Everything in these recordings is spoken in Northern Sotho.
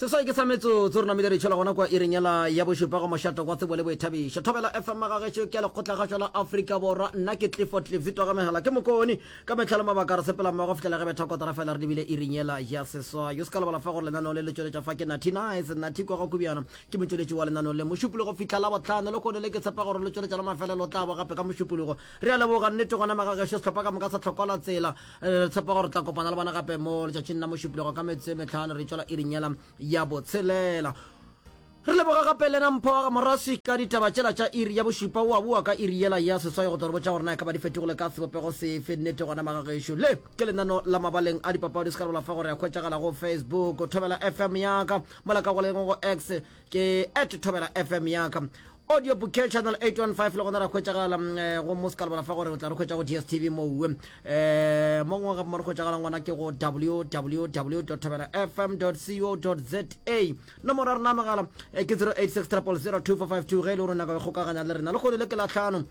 seswai ke sa metsotso re namile re tšhela gona kwa ireng yela ya bošupa go mošato kwa tsebo le boithabišo thobela fm magagetšo ke a lekgotla gašwa la afrika borwa nna ke clifford cliff di togamegela ke mokone ka metlha le mabaka re sepela mmogo fetlela ge betha kotara fela re lebile ireng yela ya seswai yo se ka lebala fa gore lenaneo le le tšweletša fa ke nathi nice nathi kwa go kubjana ke motšweletši wa lenaneo le mošupologo fihla la botlhano le kone le ke tshepa gore le tšweletša la mafelelo tla bo gape ka mošupologo re a leboga nnete gona magagesho sehlopha ka moka sa tlhokola tsela re tshepa gore tla kopana le bona gape mo letšatšing la mošupilego ka metse metlhano re tswela irinyela ya botshelela re leboga gape lena mpho morasi ka ditaba tšela tša iri ya bošupa o a boa ka iri yela ya seswai go toro botša gore na e ka ba di fetogole ka sebopego sefe nnete gona magagešo le ke lenano la mabaleng a dipapadi se ka rebola fa gore ya hwetšagala go facebook thobela fm yaka mola ka go leng go x ke at thobela fm yaka Audio Bouquet Channel 815 le gona ra hwetšagala mm, eh, go mo se ka lebala fa gore o tla re hwetša go DSTV moo um eh, mo ngwe gape mo re hwetšagalang gona ke go www thabela fm co za nomoro ya rena megala eh, ke 086 000 ge e le gore o nyaka go kgokaganya le rena le kgone le ke latlhano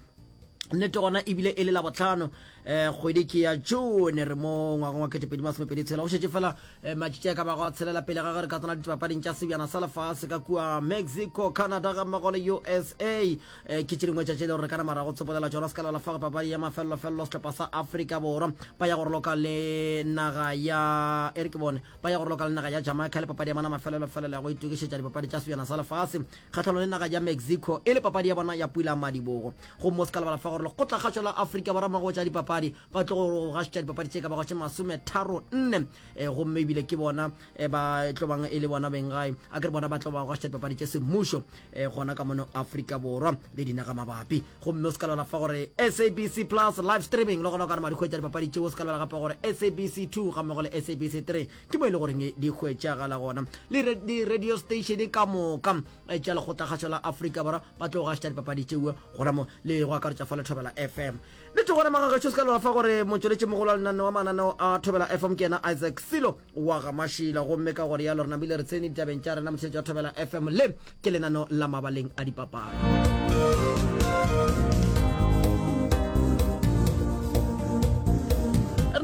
nnete gona ebile e le la botlhano um eh, kgwedi ke ya jone re mo ngwagong wa ketepedi masomepedi tshela go šetse fela eh, matšitši a ka bago a tshelela pele ga ge re ka tsena ditipapading tša sebjana sa lefase ka kua mexico canada ga mmago le usa eh, ke tše dingwe tšatši le gore re ka namara go tsepolela tsona se ka lebala fa go papadi ya mafelelofelelo setlhopha sa africa borwa ba ya go roloka le naga ya e re ke bone ba ya go roloka le naga ya jamaica le papadi ya mana mafelelofelelo ya go itokišetša dipapadi tša sebjana sa lefase kgahlano le naga ya Mexico e le papadi ya bona ya pula madibogo. Gomme o se ka lebala fa gore lekgotlakgašo la Afrika Borwa mago tša dipapadi ba tlo go gašotša dipapadi tše ka bago tše masome tharo nne eh, gomme ebile ke bona eh, ba tlo bang e le bona beng gae a ke re bona ba tlo ba gašotša dipapadi tše semmušo eh, gona ka mono Afrika Borwa le dinaga mabapi gomme o se ka lebala fa gore SABC plus live streaming le gona o ka re madikgwetsa dipapadi tšeo o se ka lebala gape gore SABC 2 ga mmogo le SABC 3 ke mo e le goreng di hwetšagala gona le di-radio station ka moka e tša lekgotlakgašo la afrika borwa ba tlo gašta dipapadi tšeo gona mo le go akaretša fa le thobela fm le tlo gona magagašo se ka lora fa gore motsweletše mogolo wa lenaneo wa mananeo a thobela fm ke yena isaac selo wa gamašila gomme ka gore ya lorena bile re tsene ditabeng tša rena motsheletša wa thobela fm le ke lenano la mabaleng a dipapadi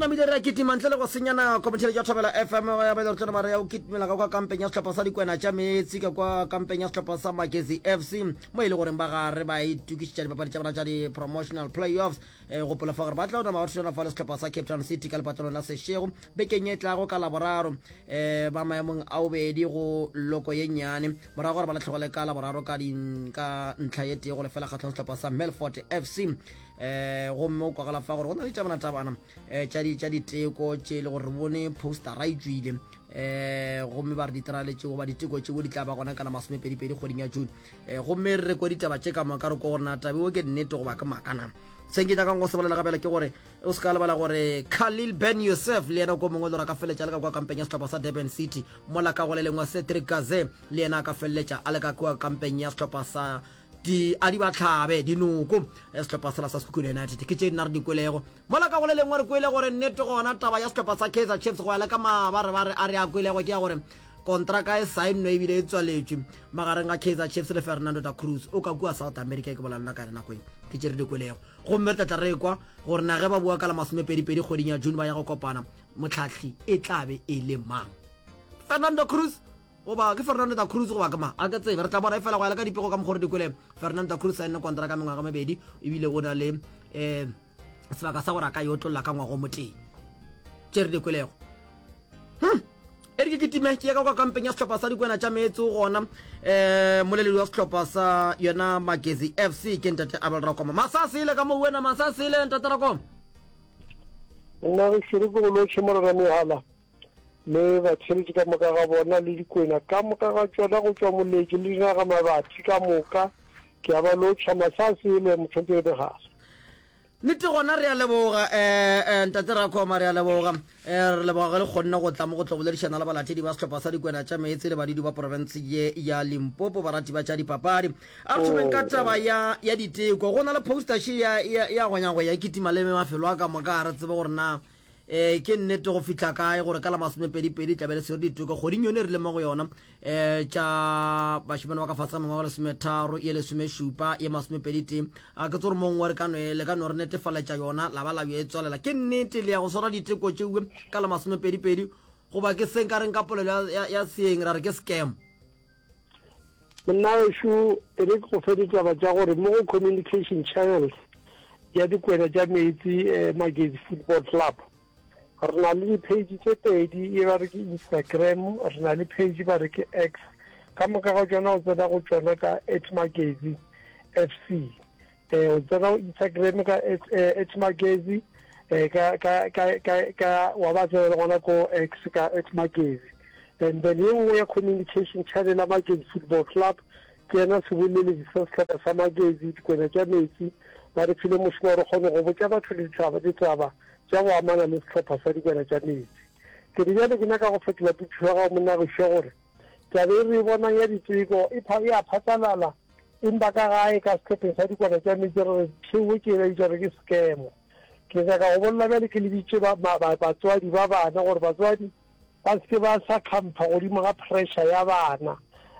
namile re a kitima ntle le go senya nako motšheletši wa thobela fm ya bele rutana mare ya o kitimela ka kwa kampeng ya sehlopha sa dikwena tša meetse ka kwa kampeng ya sehlopha sa magezi fc mo e le goreng ba gare ba itukišetša dipapadi tša bona tša di-promotional playoffs E gopola fa gore ba tla o nama ba thušana fa le setlhopha sa cape town city ka lepatlelong la sešego bekeng e tlago ka laboraro um ba maemong a bobedi go loko ye nnyane morago gore ba latlhegole ka laboraro ka ntlha ye tee go lefela kgatlhong setlhopha sa melfort f c um eh, gomme o kwagala fa gore go na le tabanatabana eh, tša diteko tše e le gore re bone postara e tswile um gomme ba re diterale tšeo ba diteko tšeo di tla ba gona kana masomepedipedi kgweding ya june e eh, gomme re kwa ditaba tše ka moka re ko gore na tabe o ke nnete goba ke makana se nke nyakang go sebalela gabela ke gore o se ka lebala gore khalil ben yosef le yena ko mongwe lora ka feleletša le ka kwa kampeng ya setlhopha sa durban city mola ka go le lengwe cedric gaze le yena a ka feleletša a le ka kwa kampeng ya setlhopha sa di a di batlhabe dinoko eh, setlhopha sela sa sekhukhune united ke tše nna re dikwelego Mola ka go le lengwe re kwele gore nnete gona taba ya sehlopha sa Kaizer Chiefs go ya le ka mabarebare a re a kwelego ke ya gore kontraka e sainnwe ebile e tswaletšwe magareng ga Kaizer Chiefs le Fernando da Cruz o ka kua South America e ke bolalena ka yone nako e ke tše re di kwelego gomme re tlatla re kwa gore na ge ba bua ka la masomepedipedi kgweding ya June ba ya go kopana motlhahli e tla be e le mang Fernando Cruz Goba ke Fernando da Cruz goba ke mang? A ke tsebe. Re tla bona efela go ya le ka dipego ka mokgwa gore di kwele. Fernando da Cruz saenne kontraka mengwaga mebedi ebile o na le um sebaka sa gore a ka yo tlolla ka ngwago motee. Tše re di kwelego. Hmm. e re ke kitime ke yaka kwa kampeng ya setlhopha sa dikwena tša meetse o gona um moleledi wa setlhopha sa yona magezi f c ke ntate abel rakoma masasele ka mo wena masasele ntate rakoma nna re šere ke go loše morera mehala le batheletši ka moka ga bona le dikwena ka moka ga tšona go tšwa moleki le dinaga mabathi ka moka ke a ba lotšha masa se le motlhompe ebe gase nete gona re a leboga um ntate rakoma re a leboga um re leboga ge le kgonne go tla mo go tlo boledišana le balathedi ba sehlopha sa dikwena tša meetse le badidi ba porofense ye ya limpopo barati ba tša dipapadi a re thomeng ka taba ya ya diteko go na le postaše ya ya gonyagoya kitima le mafelo a ka moka a re tsebe gore na eh ke nnete go fihla kae gore ka la masomepedipedi tlabe le swere ditoka kgoding yone e rile mo go yona um tša bašemane ba ka fase ga mengwaga lesometharo ye lesomešupa ye masomepeditee a ke tse gore mongwe re ka le ka no re netefaletša yona la ba la yo e tswalela ke nnete le ya go swara diteko tšeuwe ka la masomepedipedi goba ke seng ka reng ka polelo ya seeng ra re ke scam Monna wešo e re ke go fe ditaba tša gore mo go communication channels ya dikwena tša meetse eh, magezi football club re na le di-page tše pedi e ba re ke instagram re na le page ba re ke x ka moka ga tšona o tsena go tšona ka at magezi f c Eh, tsena go Instagram ka eh, H Magezi eh, ka ka ka ka ka wa ba tsena gona ko X ka H Magezi and then ye nngwe ya communication channel ya Magezi Football Club ke yena seboleledi sa sehlopha sa Magezi dikwena tša metsi ba re file mošomo gore kgone go botša batho le ditaba ditaba tša go amana le sehlopha sa dikwena tša metsi ke re bjale ke nyaka go fetola pitšho ya gago monnagišwa gore Taba e re e bonang ya diteko e pha, e a phatlalala, empa ka gae ka sehlopheng sa dikwana tša meetse re re thewe ke ena bitša gore ke scam. Ke nyaka go bolela bjale ke lebitše ba, ma, ba, batswadi ba bana gore batswadi ba se ke ba sa khampha godimo ga pressure ya bana.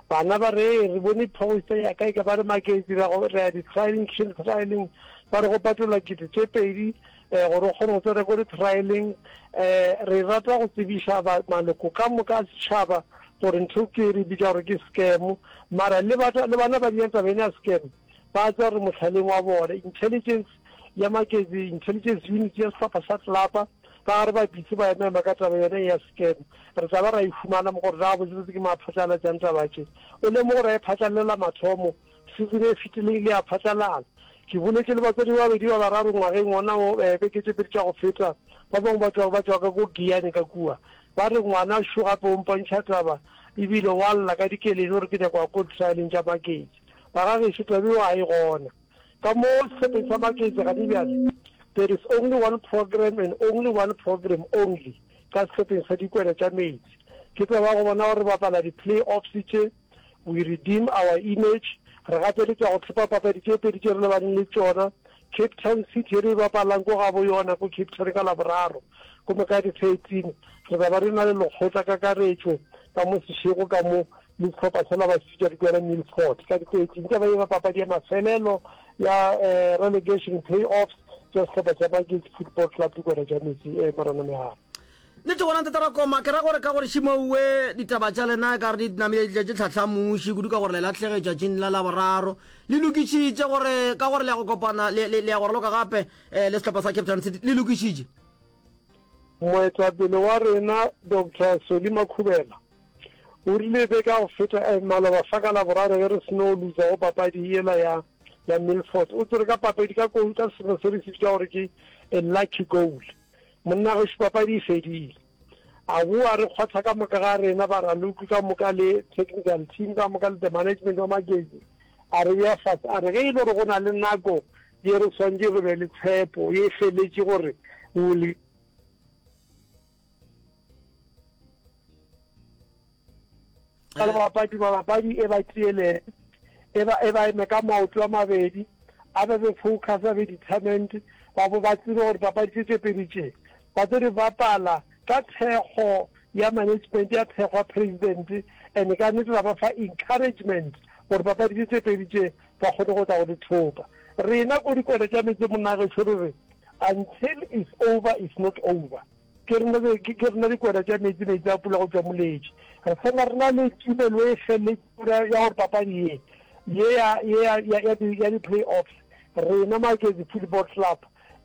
Bana ba re, ee, re bone poster ya ka e ka ba re maketse, ra go, ra ya di-trialing, trialing, ba re go patolwa kete tše pedi, um gore o kgone go tsena ko di-trialeng um re rata go tsebiša maloko ka moka a setšhaba gore ntho ke re bitša gore ke scam mara le bana ba diyang tabeng ya scam ba tsa gore motlhaleng wa bone intelligence ya makezi intelligence unit ya sehlopha sa tlelapa ka gare ba bitse ba emema ka taba yone ya scam re tla ba ra e fumana mo gore na botsebotse ke maphatalatšang taba tše o lemo gore a e phatlalela mathomo Season e fetile e ile ya phatlalala. Ke boletše le batswadi ba babedi ba bararo ngwageng wona wo eh, beke tše pedi tša go feta. Ba bangwe ba tloga ba tšwa ka ko Giyane ka kua. Ba re, Ngwana šo gape o mpontšha taba e bile wa lla ka dikeledi gore ke nyako ya ko ditrialeng tša maketše. Ba ga gešo taba eo a e gona. Ka mo sehlopeng sa maketše gane bjale, there is only one program and only one program only ka sehlopeng sa dikwena tša meetse. Ke taba ya go bona gore re bapala di-play-offs tše. We Redeem Our Image, re gapeletšwa go hlopha papadi tše pedi tše re lebaneng le tšona, Cape Town City ye re e bapalang ko gabo yona ko Cape Town ka Laboraro, gomme ka di 13 re tla ba re na le lekgotla kakaretšo ka mo sešego ka mo le sehlopha sa Labasika Dikwena Milford ka di 13. Taba ye e ba papadi ya mafelelo ya relegation play-offs ya sehlopha sa Magesi Football Club Dikwena tša Metse, Morena Meharo. Nnete gona Ntate Rakoma, ke ra gore ka gore Shimouwe ditaba tša lena e ka re di namile di tletše tlhahla muši kudu ka gore le lahlege tšatšing la Laboraro. Le lokišitše gore ka gore le ya go kopana le, le, le ya go raloka gape eh, le sehlopha sa Cape Town City? Le lokišitše? Moetapele wa rena Doctor Solly Makhubela o rile be ka go feta eh, maloba fa ka Laboraro ge re seno luza go papadi yela ya ya Milford. O tsere ka papadi ka koulu ka sefero se re se bitša gore ke a lucky goal. Monna gešo papadi e fedile. A boa re kgotha ka moka ga rena ba raloki ka moka le technical team ka moka le the management wa Magezi a re bea fase a re ge e le gore go na le nako ye re swantše re be le tshepo ye feletše gore we will ka le bapadi mabapadi e ba tielele e ba e ba eme ka maoto a mabedi a be be focus a be determined ba bo ba tsebe gore papadi tše tše pedi tše ba tlo di bapala ka thekgo ya management ya thekgo ya president and ka nnete ra ba fa encouragement gore papadi tše tše pedi tše ba kgone go tla go di thopa rena ko dikone tša metse monnageso re re until is over is not over Ke re le, ke, ke rena dikwena tša meetse, meetse a pula go tšwa moletše. Re fela re na le tumelo e felletšego ya, ya gore papadi ye, ye ya, ye ya, ya, ya di, ya di-play-offs, rena Maketše Football Club,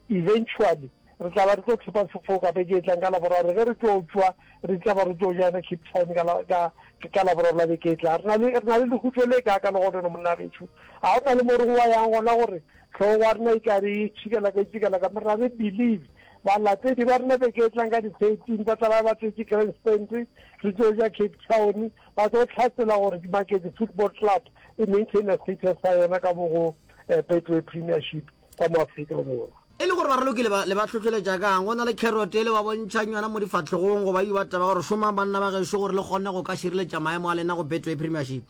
eventually re tla ba re tlo thepa sefoka beke e tlang ka Laboraro ge re tšo tšwa, re tšaba re tšo joina Cape Town ka la, ka, ka Laboraro la beke e tlang. Re na le, re na le lehutšo le kaaka legonono, monna gešo. Ga go na le mo re ngwayang gona gore hlogo ya rena e tla be e tšhikelaka, e tšhikelaka, mara re believe. Balatedi ba rena beke e tlang ka di 13 ba tla ba ba tletše grandstand, re tšo ja Cape Town, ba tlo hlatsela gore ke Maketše Football Club e maintainer status sa yona ka mo go Betway Premiership ka mo Afrika Borwa. E le gore ba raloki le ba hlohleletša ka'ng? Go na le kherote e le ba bontšhang yona mo difahlegong goba e ba taba gore šomang banna ba gešo gore le kgonne go ka šireletša maemo a lena go Betway Premiership.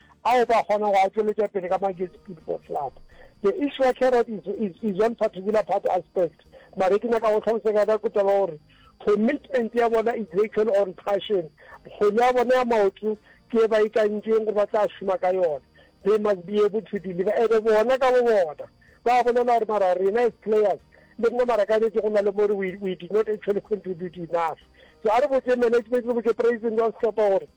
a o ba kgona go a tšweletša pele ka Magesi Speedboat Club. The Ishwa Carrot is, is, is one particular part aspect. Mare ke nyaka go tlhalosa ka ka kutalo gore commitment ya bona is actually on passion kgone ya bona ya maoto ke ba ikantšeng gore ba tla šoma ka yona they must be able to deliver ebe bona ka bo bona ba bolela gore mara rena as players le nna mara ka nete go na le more we, we did not actually contribute enough so a re botse management re botse president wa setlhopha gore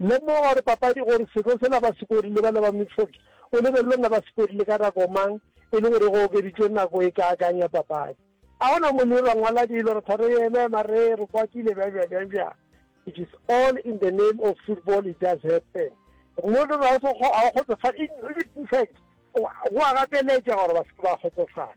Lemoga gore papadi gore seko sela ba sekorile bana ba Mitford o lebelelwe nna ba sekorile ka nako mang e le gore go okeditšwe nako e kaakang ya papadi. A go na mo le rangwala dilo re tha re eme mare re kwatile bjang bjang bjang bjang it is all in the name of football it does happen mo re ra go a kgotsofala in in fact go a gateletša gore ba se ba kgotsofala.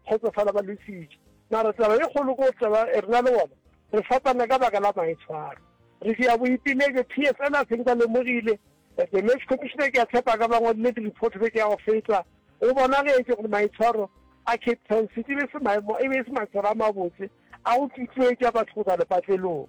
kgotsofala ba lwefitše. Mara taba ye kgolo ko taba e rena le bona re fapana ka baka la maitshwaro. Re dia boipelaetšo PSL a seng ba lemogile, the match commissioner ke a tshepa a ka ba ngwadile di report beke ya go feta. Go bonagetše gore maitshwaro a Cape Town City e be se maemo e be e se maitshwaro a mabotse a go tutuetša batho go tla lepatlelong.